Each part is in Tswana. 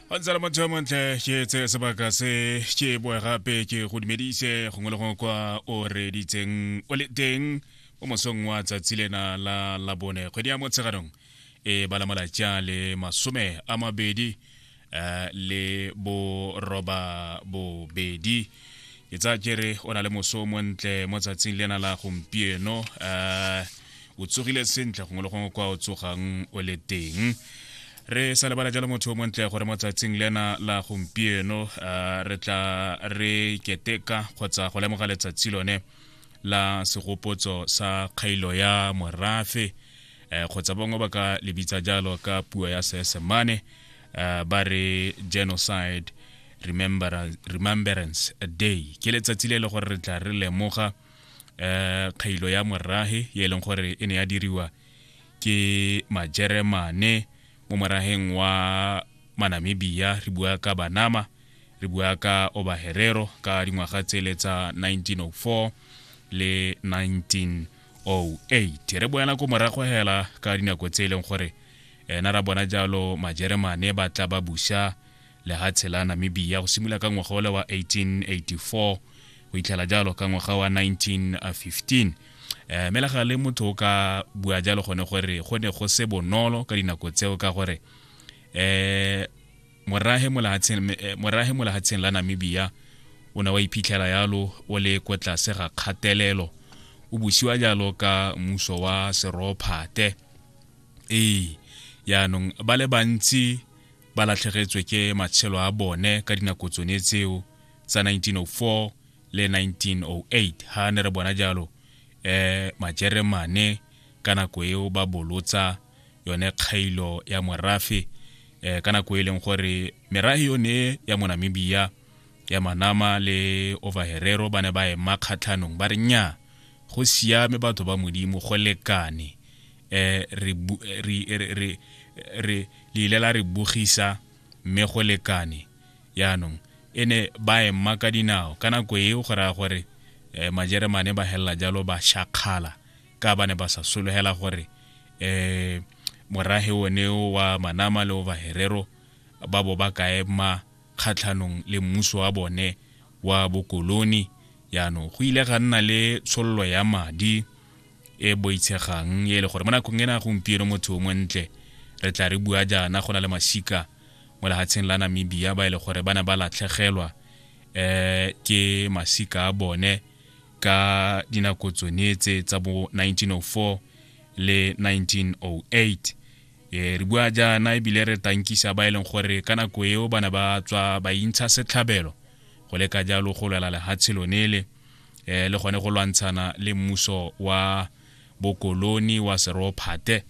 wa ntsala motho yo montle ke tse sebaka se ke boe gape ke go dumedise gongwe le gongwe kwa o reditseng o le teng o mosong wa tsatsi lena la labone kgwedi ya motsheganong e bala malatsi a le masome a mabedi um le boroba bobedi ke tsaya kere o na le moso o montle mo tsatsing lena la gompieno um o tsogile sentle gongwe le gongwe kwa o tsogang o le teng re sa lebala jalo motho o montle gore mo tsatsing lena la gompieno uh, re tla re keteka kgotsa go lemoga letsatsi lone la segopotso sa kgailo ya morafe eh, kgotsa bangwe ba ka lebitsa jalo ka puo ya seesemane eh, ba re genocide remembrance day ke letsatsi le e le gore re tla re lemoga um kgailo ya morage ye e leng gore e ne ya diriwa ke majeremane mo morageng wa manamibia re bua ka banama re bua ka obaherero ka dingwaga tsele tsa 1904 le 1908 re boela ko morago hela ka dinako tse e leng gore ena ra bona jalo majeremane ba tla ba busa lehatshe la namibia go simolola ka ngwaga ola wa 1884 go itlhela jalo ka ngwaga wa 1915 eh mela ga le motho o ka bua jalo gone gore go ne go se bonolo ka dinako tseo ka gore eh morahe molahatsheng eh, morahe molahatsheng la Namibia o ne wa iphitlhela yalo o le kwa tlase ga kgatelelo o busiwa jalo ka muso wa serophate ee yaanong ba le bantsi ba latlhegetswe ke matshelo a bone ka dinako tsone tseo tsa 1904 le 1908 ha ne re bona jalo eh majeremane ka nako eo ba bolotsa yone kgailo ya morafe eh ka nako e leng gore merafe yone ya monamibia ya manama le overherero ba ne ba ema kgatlhanong ba re nnyaa go siame batho ba modimo go lekane eh, re, re, re, re, re leile la re bogisa mme go lekane yaanong e ne ba ema ka dinao ka nako eo go raya gore um majeremane ba helela jalo ba shakgala ka ba ne ba sa sologela gore um morage one wa manama le o baherero ba bo ba ka ema kgatlhanong le mmuso wa bone wa bokoloni yaanong go ile ga nna le tshololo ya madi e boitshegang e le gore mo nakong ena gompieno motho o montle re tla re bua jaana go na le masika mo lehatsheng la namibia ba e le gore ba ne ba latlhegelwa um ke masika a bone ka dinako tsone tse tsa bo 1904 le 1908 e re bua jaana ebile re tankisa ba e leng gore ka nako eo ba ne ba tswa ba intsha setlhabelo go leka jalo go lwela lehatshe lone le um le gone go lwantshana le mmuso wa bokoloni wa serophate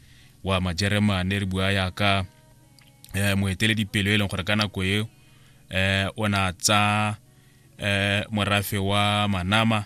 wa majeremane re bua yaka um moeteledipelo e leng gore ka nako eo um o na tsa um morafe wa manama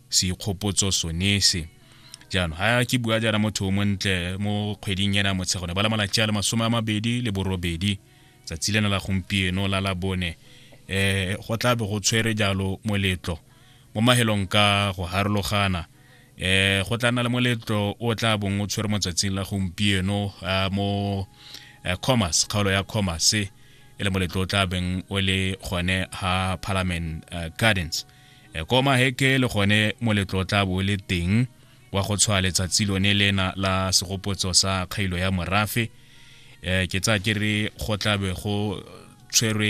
seikgopotso sone se jaanong ga ke bua jaana motho o montle mo kgweding ena motshego ne ba la malatsi a le masome a mabedi le borobedi tsatsi lena la gompieno la la bone um go tla be go tshwere jalo moletlo mo mahelong ka go harologana um go tla nna le moletlo o tla bong o tshwere mo tsatsing la gompieno mo commerce kgaolo ya commerce e le moletlo o tla beng o le gone ha parliament gardens e koma heke le gone moletlo tla bo le teng wa go tshwa letsatsi lone lena la segopotso sa kgailo ya morafe um ke tsa ke re go tlabe go tshwerwe